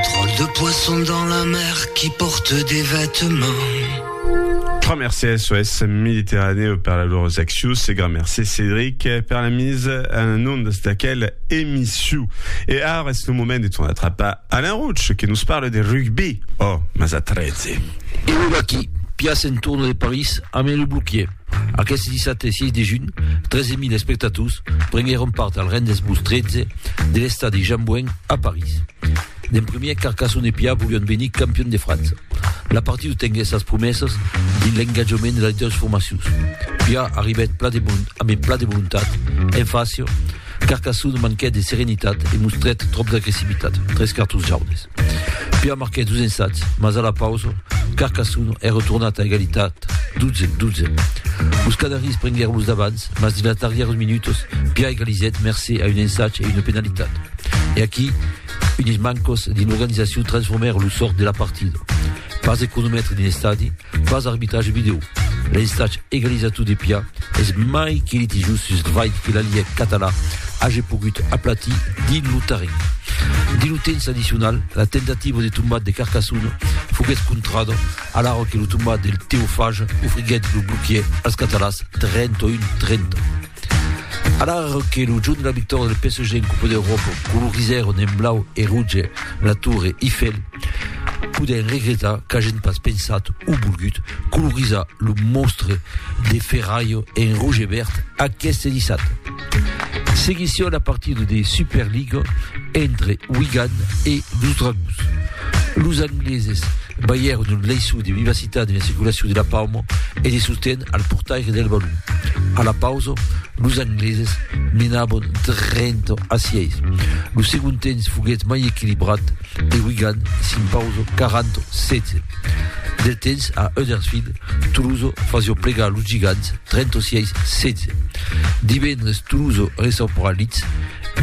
Dròlle de poisson dans la mer qui porte des vêtements. Gran mercé SOS Mediterranèu per la lor accius e gran mercé Cédric per la mise en ondes d'aquel emission. E ara es lo moment de ton atrapar Alain Roche que nos parle de rugby. Oh, mas a 13! E lo vaquí, piace en torno de París, amé lo bloquier. Aqueste dissabte 6 de junh, 13.000 espectators prenguèron part al Rendez-Vous 13 de l'estadi Jean Bouin a París. D'en primièr, Carcassonne e Pià volián venir campions de França. La partida tenguèt sas promesas dins l'engatjament de las doas formacions. Pià arribèt pla de bon, ambe pla de volontat, en fàcia, Carcassone manquèt de serenitat e mostrèt tròp d'agressivitat, tres cartons jaunes. Pia marquèt dos ensats, mas a la pausa, Carcassone es retornat a egalitat 12, 12. Los Canaris prenguèron los davants, mas dins las darrièras minutas, Pia egalizèt mercé a un ensat e una penalitat. E aquí, unes mancas dins l'organizacion transformèron lo sòrt de la partida. pas de cronomètre d'un estadi, pas arbitrage vidéo. L'estatge egalizator de Pia es mai que litigiós sus l'vai que la Liga català hage pogut aplatir dins lo terren. Dins lo temps addicional, la tentativa de tombat de Carcassonne foguèt contrada a l'ara que lo tombat del Teofage ofriguèt lo bloquier als catalans 31-30. A l'ara que lo jorn de la victòria del PSG en Copa d'Europa colorizèron en blau e rouge la Torre Eiffel, Podèm regretar qu'agen pas pensat o volgut colorizar lo monstre de ferralh en roge e verd aqueste dissabte. Seguission la partida de Superliga entre Wigan e los Dragons. Los angleses balhèron un laissou de vivacitat en la circulacion de la pauma e de sosten al portaire del balon. A la pausa, los angleses menabon 30 a 6. Lo segond temps foguèt mai equilibrat, De Wigan s'impauso 40-16. Del temps a Huddersfield, Toulouse fasio plegar los gigants 36-16. Divendres Toulouse ressaupra Leeds,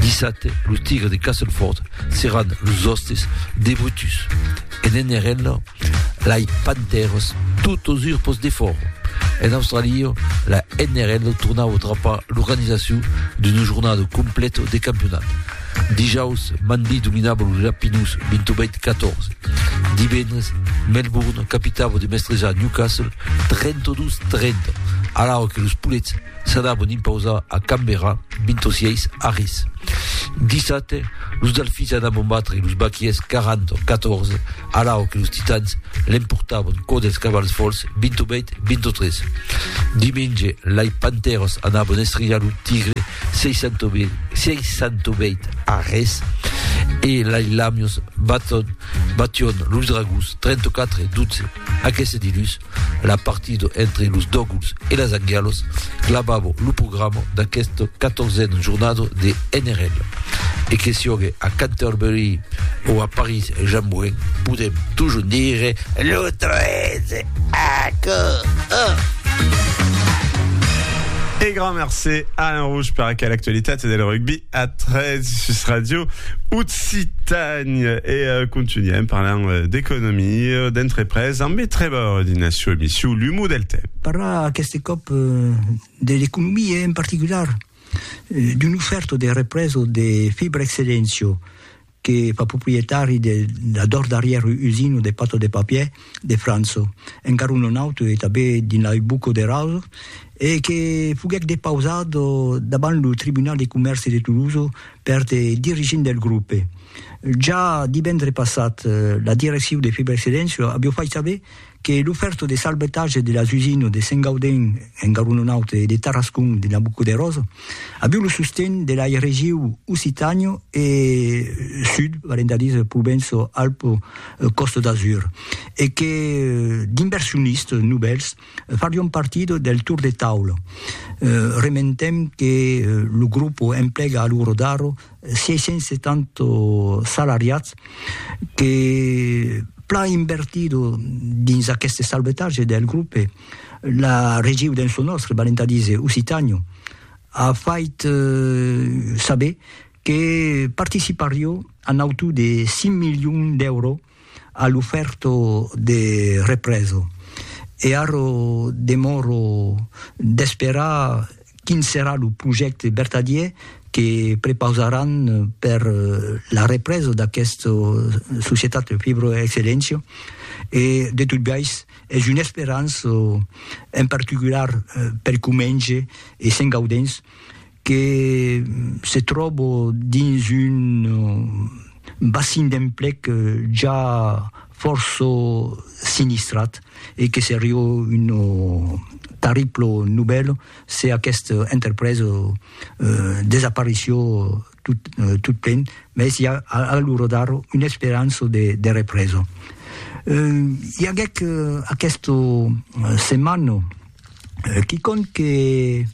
dissabte los Tigres de Castleford seràn los òstes de Brutus. En NRL, lai Panthers tot os urpos de fòro. En Australia, la NRL tornau trapar l'organizacion d'un jornado complet de campionat. Dijaus, Manly dominava los Lapinus 28-14. Divendres, Melbourne capitava de mestrejar Newcastle 32-30, alara que los Poulets s'anavan impausar a Canberra 26 a res. Dissabte, los Delfins anavan batre los Baquiers 40-14, alara que los Titans l'emportavan quò dels Cavals Fols 28-23. Dimenge, lai Panthers anavan estrijar lo Tigre 668 arrés e lai lamios baton, bation los dragons 34 e 12. Aqueste dilús, la partida entre los Doguls e las Angialos clavava lo programa d'aquesta 14a jornada de NRL. E que siògue a Canterbury o a París Jean Moulin, podem toujours dire lo 13! Aquò, oh! E grand mercé Alain Rouge per aquela actualitat del rugbi a 3 sus Radio Occitània. E uh, continuem parlant uh, d'economia, d'entrepresa, amb e trebor din la sua emissió L'Humo del Temps. Parlar aquest cop uh, de l'economia en particular, uh, d'un oferto de represo de fibra excellencio, que fa proprietari de la dors darrièr usina de pata de papier de França, encara un non auto e tanben dins la Buco de Raso, e que foguèt depausat davant lo Tribunal de Comèrci de Toulouse per de dirigents del grupe. Ja divendre passat, la direccion de Fibrexcedens aviá fait saber que lo fèrto de salvetatge de las usines de Saint-Gaudens en Garonenaut e de Tarascon de Nabucoderós aviu lo sosten de lai regiu Occitània e Sud, valent a dire Provenço-Alpes-Côte d'Azur, e que d'inversionistes novèls farion partida del tour de taula. Rementem que lo grupo emplega a lo rodar 670 salariats que plan invertido dins aqueste salvetatge del grope, la regiu dens lo nòstre, valent a díser Occitània, a fait saber que participarió a nautu de 5 milions d'èuros A l'ufèrto de represo. E arro demòro d'esperar quin serà lo projècte vertadier que prepausaràn per la represa d'aquesta societat Fibroexcellentia e de tot biais es una esperança en particular per Comenge e Sent Gaudens que se tròbo dins un bassin d'emplec ja fòrça sinistrat e que seria una tarribla novèla se aquesta entrepresa desapareció tot plen, mès i a a l'ora d'ara una esperança de represa. I aguèc aquesta setmana quicòm que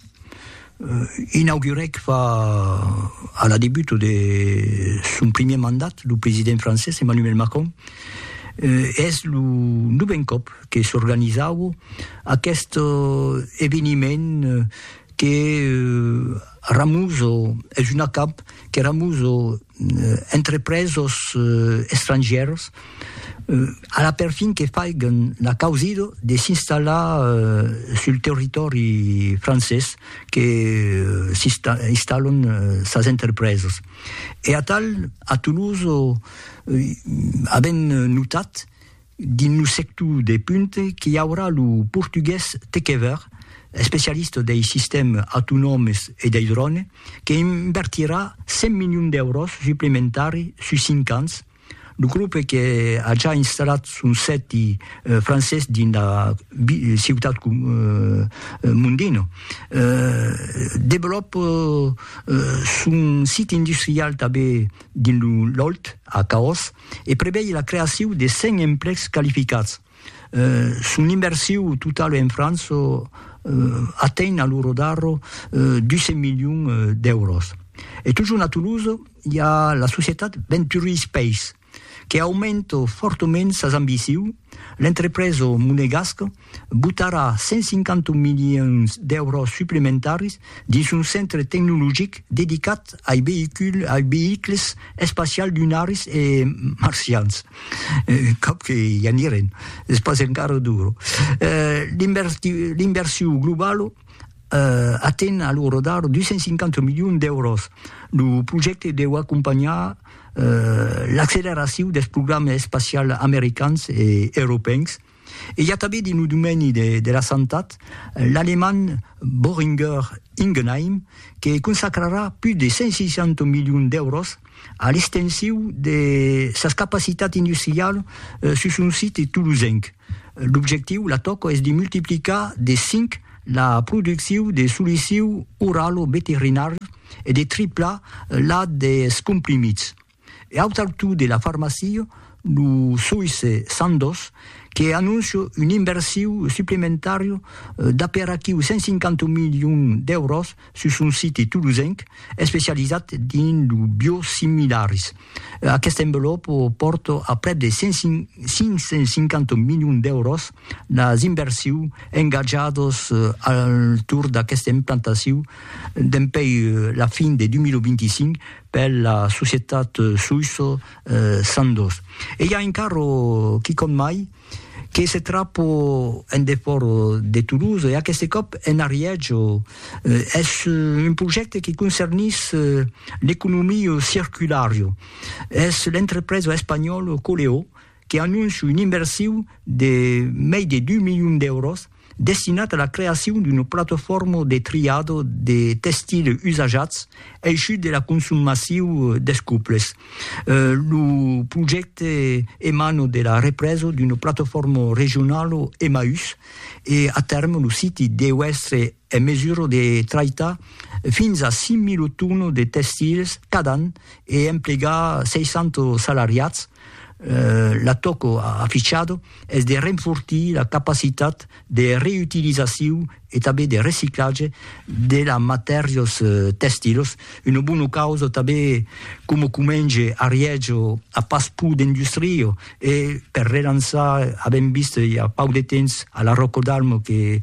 Inaugurèc fa a la debut de son primièr mandat lo president francés Emmanuel Macron e es lo novèn còp que s'organizaua aqueste eveniment que ramusa, es un acamp que ramusa entrepresos estrangièrs a la perfin que faiguen la causida de s'installar sul territòri francés que s'installan sas entrepresas e atal a Toulouse avèm notat Dins lo sector de punt qu'i aurà lo portugués Tekever, especialista dei sistèmes autonòmes e dei dròne, que invertirà 100 milions d'èuros suplementari sus 5 ans. Lo grup que a ja installat son sèti francés dins la ciutat Mondino, develòpa son sit industrial tanben dins lo Lòlh, a Caós, e prevei la creaciu de 100 emplecs qualificats. Son inversiu totau en França atenh a lo rodar 200 milions d'èuros. E totjorn a Toulouse i a la societat Venturi Space, que aumenta fòrtament sas ambiciu, l'entrepresa monegasca botarà 150 milions d'èuros suplementaris dins son centre tecnologic dedicat ai veïculs espacials lunaris e marcians. Cap que i anirem, es pas encara duro. L'inversion globala aten a lo rodar 250 milions d'èuros. Lo projècte deu acompanhar l'acceleracion dels programas espacials americans e europèus, E i a tanben dins lo domeni de la santat l'alemand Boehringer Ingelheim que consacrarà pus de 160 milions d'èuros a l'extensiu de sas capacitats industrialas sus son site tolosenc. L'objectiu, la tòca, es de multiplicar de 5 la produccion de solicius oralo-veterinàrius e de triplar la dels comprimits. E au taltau de la farmacia, lo soïsse Sandoz que anóncia un inversiu suplementària d'aperaquiu 150 milions d'èuros sus son site tolosenc especializat dins lo biosimilaris. Aqueste envelop pòrta a prèp de 550 milions d'èuros las inversius engatjadas al torn d'aquesta implantaciu dempuèi la fin de 2025 per la societat Suisso Sandoz. E i a un carro, quicòm mai, que se trapò en defòra de Toulouse, e aqueste còp en Arièjo. Es un projècte que concernís l'economia circulara. Es l'entrepresa espanhòla Coleó. que anóncia un inversiu de mei de dus milions d'èuros destinat a la creacion d'una platofòrma de triado de testile usajats eishut de la consum massiu des cuples. Lo projècte emana de la represa d'una platofòrma regionala Emmaüs e a tèrme lo siti deu èstre en mesura de traitar fins a 5.000 tonas de testils cada an e emplegar 60 salariats, La toco a afichado es de renfortir la capacitat de reutilizaciu e tanben de reciclatge de la matèrios tèstilos, una bona causa tanben coma comenge a Riègio a pas pur d'industrio e per relançar avèm vist i a pauc de temps a la Ròcodalm que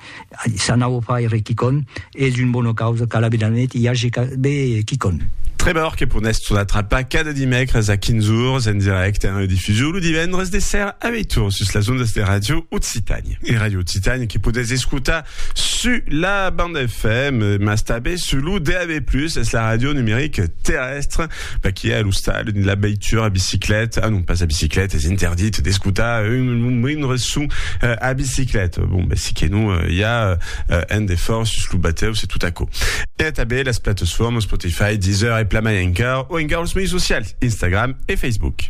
S'anau faire quicon es un bona causa qu'a la Bedanet i age be quicon. Tremor que ponètz tot atrapar cada dimècres a 15 ors en dirècte e en redifusion lo divendres de sèra a 8 ors sus las ondas de Radio Occitània. E Radio Occitània que podètz escotar sus la banda FM mas tanben sus lo DAB+, es la ràdio numeric terrèstre Vaquí a l'ostal la veitura a bicicleta, ah non pas a bicicleta, es interdit d'escutar un, un moindre son euh, a bicicleta. Bon, ben si que non, euh, i a euh, un defòrt sus lo batèu, se tot aquò. E a tabé las plataformas Spotify, Deezer e Plamayancar, o encara los mei socials, Instagram e Facebook.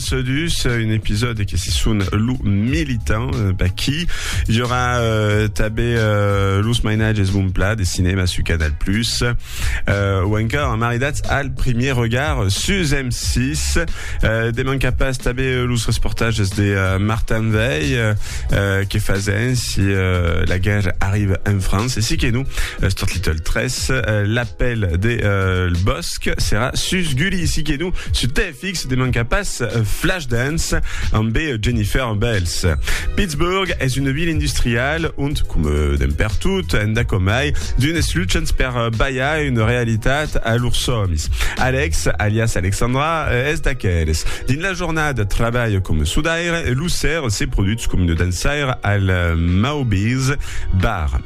Sedus, un episòde que se son lo militant Baki. Hi aurà euh, també euh, los mainatges Bon Pla de cinema su Canal+, Plus, euh, o encara maridats al premier regard sus M6. Euh, de manca pas també los reportatges de euh, Martin Veil euh, euh que fasen si euh, la guerre arrive en France. Et si que nous, euh, Start Little 13, euh, l'appel de euh, le bosc sera sus Gulli. Si que nous, su Fix de manca pas Flashdance ambé Jennifer Bells. Pittsburgh es una vila industrial ont, coma d'en pertot, enda com mai, d'unes luchants per balhar una realitat a lors sòmis. Alex, alias Alexandra, es d'aqueles. Dins la jornada trabalha coma sudaire e lo ser se produtz coma una dançaire al Mauby's Bar.